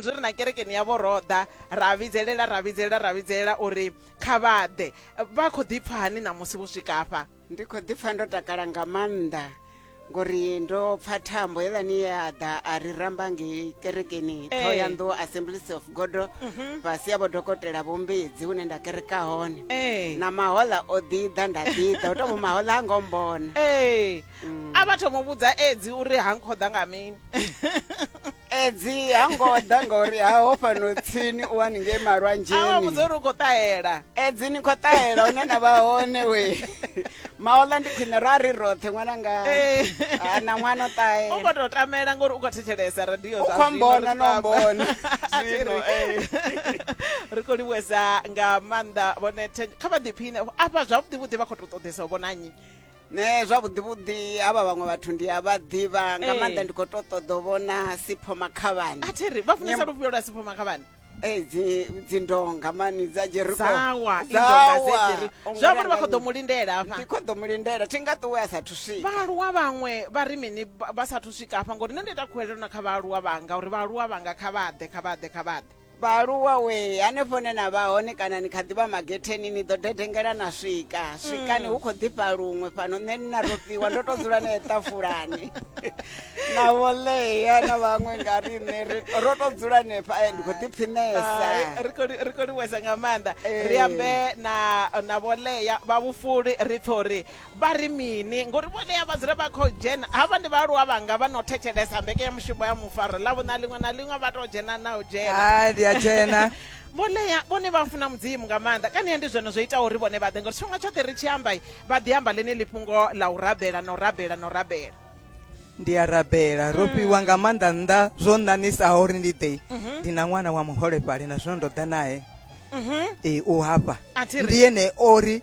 zwi ri na kerekeni yavho ro ḓa ra vhidzelela ra vhidzelela ra vhidzelela uri kha vha ḓe vha khou ḓi pfha hani ṋamusi vho swika afha ndi khou ḓi pfha ndo takala nga maanḓa ngori ndo pfha thambo heiḽani ye a ḓa a ri ramba ngei kerekeni Eh. thoyanḓou assemblies of god fhasi ya vho dokotela vhombedzi hune nda kereka hone Eh. na mahola o ḓiḓa nda ḓiḓa u tomo mahola a ngo mbona ee a vha thoma u vhudza edzi uri ha nkhoḓa nga mini edzi ha ngo ḓa ngauri ha ho fhano tsini u wani ngei malwanzheniawa vhudza uri u khou ṱahela edzi ni khou ṱahela hune na vha hone we maola ndi khwine ra ri roṱhe ṅwana nga eh. ah, na ṅwana o ṱahela u khou tou tamela ngori u khou thetshelesa radio u khou mbona no mbona zwino eh. ri khou livhuwesa nga maanḓa vhone kha vha ḓiphine afha zwavhuḓi vhuḓi vha khou tou ṱoḓesa u vhonanyi nṋe zwavhuḓivhuḓi havha vhaṅwe vhathu ndi a vha ḓivha nga Eh. maanḓa ndi khou to ṱoḓa u vhona sipho makhavhani a thi ri vha funesa Nyam- lufhio lwa sipho makhavhani Eh, dzi- dzindonga mani dza jeriko dzawa indonga dze dziri zwi amba uri vha khou ḓo mu lindela ndi hafha khou ḓo mu lindela thi nga ṱuwe a sathu swika vhaaluwa vhaṅwe vha ri mini vha vha sathu swika hafha ngori nṋe ndi ita khuwelelo na kha vhaaluwa vhanga uri vhaaluwa vhanga kha vha ḓe kha vha ḓe kha vha ḓe Vhaaluwa wee hanefho ne na vha hone kana ni kha ḓi vha magetheni ni ḓo dedengela na swika swikani hu khou ḓifha luṅwe fhano nṋe ni na rofhiwa ndo tou dzula nae ṱafulani na vholea na vhaṅwe nga riṋe ri- ro tou dzula nefha eh, ndi khou ḓiphinesa Hai, ri khou li- ri khou livhuwesa nga maanḓa Ee. ri ambe na na vholea vha vhufuli ri pfhe uri Vha ri mini? Ngori vhodea vha dzula vha khou dzhena. Havha ndi vhaaluwa vhanga vha no thetshelesa mbekenyamushumo ya Mufaro Ḽavhuṋa ḽiṅwe na ḽiṅwe, vha tou dzhena na u dzhena. Hai, ndi a dzhena. Vho Lea vhone vha funa Mudzimu nga maanḓa, kanea ndi zwone zwo itaho uri vhone vha ḓe, ngori tshifhinga tshoṱhe ri tshi amba, vha ḓi amba ḽeneḽi fhungo ḽa u rabela na u rabela na u rabela. Ndi a rabela. Ro fhiwa nga maanḓa nnḓa zwo ṋaṋisaho uri ndi ḓe. Ndi na ṅwana wa muholefhali na zwino ndo ḓa nae. Ee, u hafha. A thi ri. Ndi ene o ri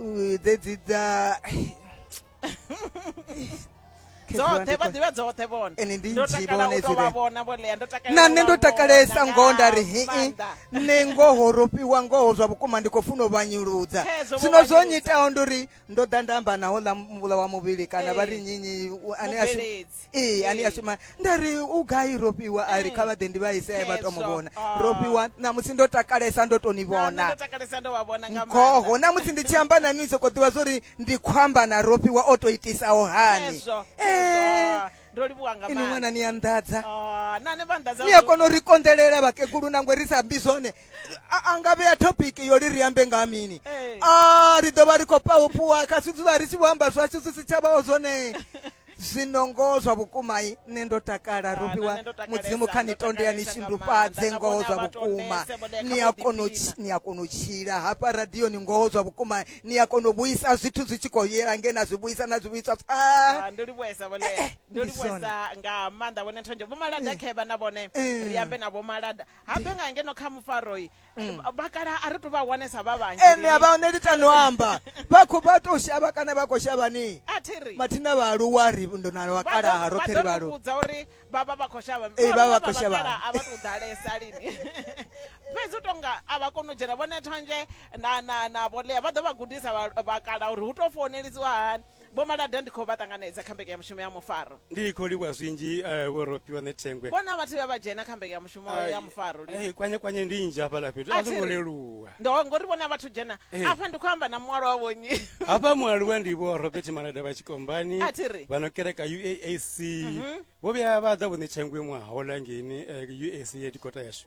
Ooh, they did that. dzoṱhe vha ḓivha dzoṱhe vhone Ende ndi ndo nnzhi takala vhone u tou vha dzire. vhona vho lea ndo takala na u nṋe vha ndo vhona takalesa nga ngoho nda ri hii maanḓa. nṋe ngoho ro fhiwa ngoho zwa vhukuma ndi khou funa u vhanyuludza Khezwo vho zwino zwo vhanyuludza. nyitaho ndi uri ndo ḓa nda amba naho ḽa mvula wa muvhili kana vha ri Ee. nyinyi u- ane a shuma Mubveledzi. ee ani a shuma nda ri u gai ro fhiwa a ri kha vha ḓe ndi vha ise vha to mu vhona ro fhiwa ṋamusi ndo takalesa ndo to ni vhona ngoho ṋamusi ndi tshi amba na ni sokou ḓivha zwo ri ndi khou amba na ro fhiwa o to itisaho hani ini ṅwana ni anḓadza ni a kona u ri konḓelela vhakegulu nangwe ri sa ambi zwone a nga vhea topic yo ri ri ambe nga mini a ri ḓo vha ri khou pahofhuwa kha zwi dzula ri tshi vho amba zwashu zwi si tsha vhaho zwone zwino ngoho zwa vhukuma i nṋe ndo takala ruvhiwa mudzimu kha ni tonde ya ni shindufhadze ngoho zwa vhukuma ni a kona ni a kona u tshila hafha radioni ngoho zwa vhukuma ni a kona u vhuisa zwithu zwi tshi khou yela nge na zwi vhuisa na zwi vhuiswa pfa ndi livhuesa vhone eh, eh, ndi livhuesa nga maanḓa vhone nthonje vho malada eh. khevha na vhone ri ambe na vho malada habe nga ngeno kha mufaroi Mm. vhakala a ri to vha wanesa vha vhanzhi ene a vha hone ndi tano amba vha khou vha tou shavha kana vha khou shavhani a thi ri mathina vhaaluwa ri ndo na vhakalaha roṱhe ri vhaaluwa vhudza uri vha vha vha khou shavha Ee, vha vha khou shavha. a vha tou ḓalesa lini fhedzi u tonga a vha koni u dzhena vhone thonzhe na na na vholea vha ḓo vha gudisa vha- vhakala uri hu tou founelisiwa hani Vho Malada ndi khou vha ṱanganedza kha mbekanyamushumo ya mufaro. Ndi khou livhuwa zwinzhi Vho Rofhiwa Nethengwe. Vho na vhathu vhe vha dzhena kha mbekanyamushumo ya mufaro lini? Hai, kwanyekwanye ndi nnzhi hafhaḽa fhethu, a zwo ngo leluwa. Ndo, ngori vho na vhathu dzhena. Afha ndi khou amba na mualuwa vho nnyi? Hafha mualuwa ndi Vho Robert Malada vha Tshikombani, A thi ri. vha no kereka UAC. Vho vhuya vha ḓa Vho Nethengwe ṅwaha wo ḽa ngeini UAC ya dikota yashu.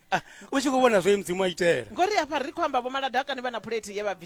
u tshi khou vhona zwe mudzimu a itela ngori afha ri khou amba vho maladakani vha na phulethi ye vha bvisa